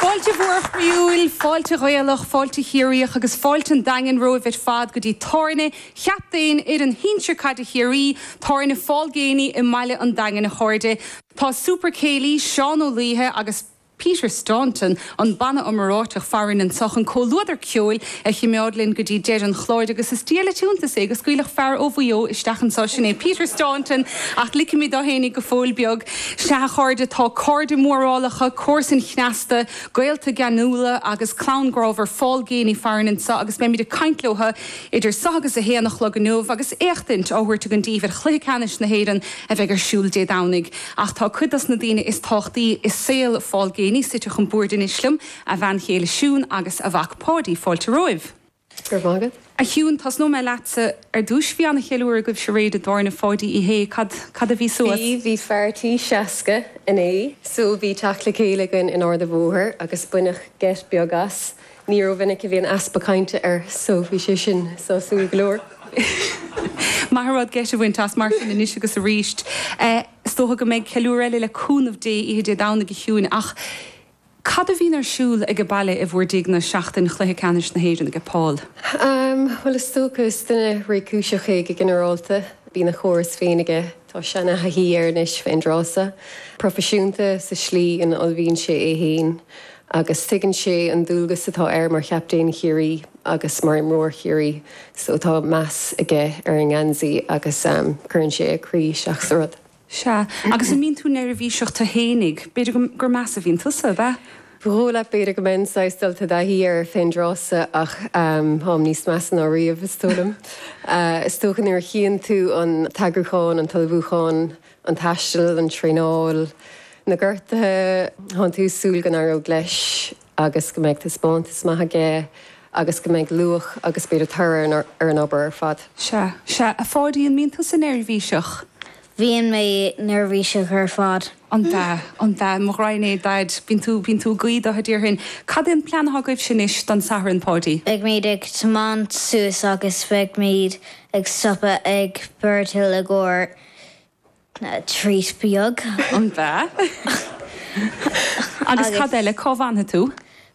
Fáilte mhór chroíúil, fáilte Ghaelach, fáilte Chiarraíoch agus fáilte an Daingin romhaibh ar fad go dtí tábhairne chaptaen fhoireann shinsear caide Chiarraí, Tábhairne Phaul Geaney i mbaile an Daingin a chairde. Tá Super Céilí, Seán Ó Laoithe agus. Peter Staunton, an banna iomráiteach farainn anso, chun comhluadar ceoil a chimeád linn go dtí deireadh an chláir agus is diail an t-iontas é go scaoilfeadh fear ó Mhaigh Eo isteach anso, sin é Peter Staunton, ach ligfimid dó fhéinig go fóill beag. Sea, a chairde, tá cairde mórálacha, comharsain chneasta, gaolta geanúla agus clann grámhar Phaul Geaney farainn anso agus beimid ag caint leotha idir so agus a haon a chlog inniu agus éachtaint á thabhairt againn daoibh ar Chluiche Ceannais na hÉireann a bheidh ar siúl Dé Domhnaigh. Ach tá cuid dos na daoine is tábhachtaí i saol Phaul Geaney suite chun boird anois liom, a bhean chéile Siún agus a mhac Páidí, fáilte romhaibh. Go raibh maith agat. A Shiúin, tosnóidh mé leatsa ar dtúis, bhí an-cheiliúradh agaibh aréir i dtábhairne Pháidí Uí Shé, cad, cad a bhí suas? Bhí, bhí party seasca ansan, bhí teacht le chéile againn in Ard an Bhóthair agus baineadh geit beag as. Ní ró-mhinic a bhíonn easpa cainte air so bhí sé sin sásúil go leor. Maith an rud geit a bhaint as, mar sin, anois agus arís. Is dócha go mbeidh ceiliúradh eile, le cúnamh Dé, oíche Dé Domhnaigh a Shiúin, ach cad a bhíonn ar siúl aige baile i bhur dtighne seachtain chluiche ceannais na hÉireann aige Paul? Bhuel, is dócha, is duine réchúiseach é go ginearálta. Bíonn a chóras féin aige Tá seanathaithí air anois fén dtráth seo proifisiúnta sa slí ina ullmhaíonn sé é féin agus tuigeann sé an dualgas atá air mar chaptaen Chiarraí agus mar imreoir Chiarraí so tá meas aige ar an ngeansaí agus cuireann sé a chroí isteach sa rud. Sea, agus an mbíonn tú neirbhíseach tú fhéinig? B'fhéidir gur measa a bhíonn tusa, ab ea? Bhuel, ach b'fhéidir go mbeinn saghas dulta i dtaithí air fén dtráthsa, ach táim níos measa ná riamh, is dóigh liom. Is dócha nuair a chíonn tú an t-eagrúchán, an t-ullmhúchán, an taisteal, an traenáil, na gortaithe, tá'n tú ag súil go n-éireoidh leis agus go mbeidh taispeántas maith aige agus go mbeidh luach agus b'fhéidir toradh ar an obair ar fad. Sea, sea, a Pháidí, an mbíonn tusa neirbhíseach? Bíonn mé neirbhíseach ar fad. An ea? An ea? Mo ghraidhin é, Daid. Bíonn tú, bíonn tú ag guí do Dhaidí mar sin. Cad é an plean atá agaibhse anois don Satharn, Páidí? Beidhmid ag tiomáint suas agus beidhmid ag stopadh ag Birdhill i gcomhair treat beag. An ea? Agus cad eile? Cá bhfanfaidh tú?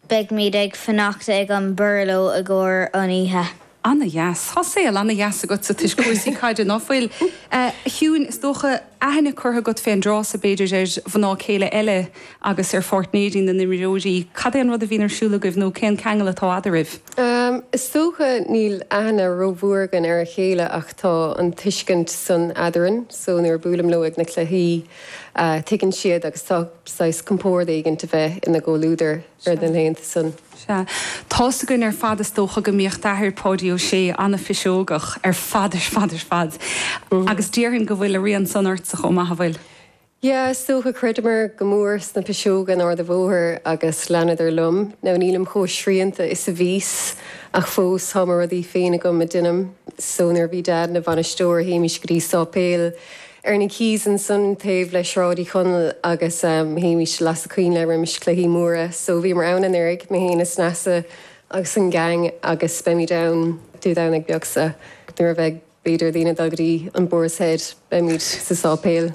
Beidhmid ag fanacht ag an Burlo i gcomhair an oíche. Ana dheas. Tá saol ana dheas agat is tuiscint ar chúrsaí caide, ná fuil? A Shiúin, is dócha aithne curtha agat fén dtráth so, b'fhéidir, ar mhná céile agus ar pháirtnéirí na n-imreoirí. Cad é an rud a bhíonn ar siúl agaibh nó cén ceangal atá eadaraibh? Is dócha níl aithne ró-mhór againn ar a chéile ach tá an tuiscint san eadarainn so nuair a bhuailim leo ag na cluichí tuigeann siad agus tá saghas compórd éigint a bheith ina gcomhluadar. ar na laethanta san. Sea. Tá's againn ar fad is dócha go mbíodh d'athair, Páidí Ó Sé, an-phiseogach ar fad ar fad ar fad. Agus déarfainn go bhfuil a rian san ortsa chomh maith, an bhfuil? Yeah, is dócha. Chreideamar go mór sna piseoga in Ard a' Bhóthair agus leanadar liom. Now nílim chomh srianta is a bhíos ach fós tá mo rudaí féin agam a dheinim. So nuair a bhí Dad ina bhainisteoir théimís go dtí Sáipéal Ar na quays ansan taobh le Sráid Uí Chonaill agus théimís ag lasadh coinnle roimis cluichí móra. So bhíomar ann anuraidh, mé fhéin is Neasa agus an gang agus beimid ann Dé Domhnaigh beag seo so nuair a bheidh b'fhéidir daoine ag dul go dtí an Boar's Head beimid sa sáipéal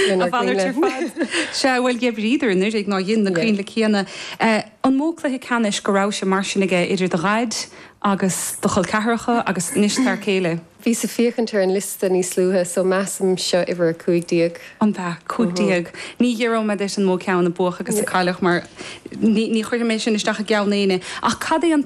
lenár gcoinnle. Sea, bhuel d'oibríodar anuraidh ná dhein na coinnle céanna. An mó cluiche ceannais go rabhais mar sin aige idir do dhaid agus do chol ceathracha agus anois d'fhear céile? Bhíos ag féachaint ar an liosta níos luaithe, so measaim seo uimhir a cúig déag. An b'ea? Cúig déag? Ní fhiafróidh mé díot an mó ceann a buadh agus a cailleadh mar ní chuirfidh mé sin isteach i gceann éinne ach cad é an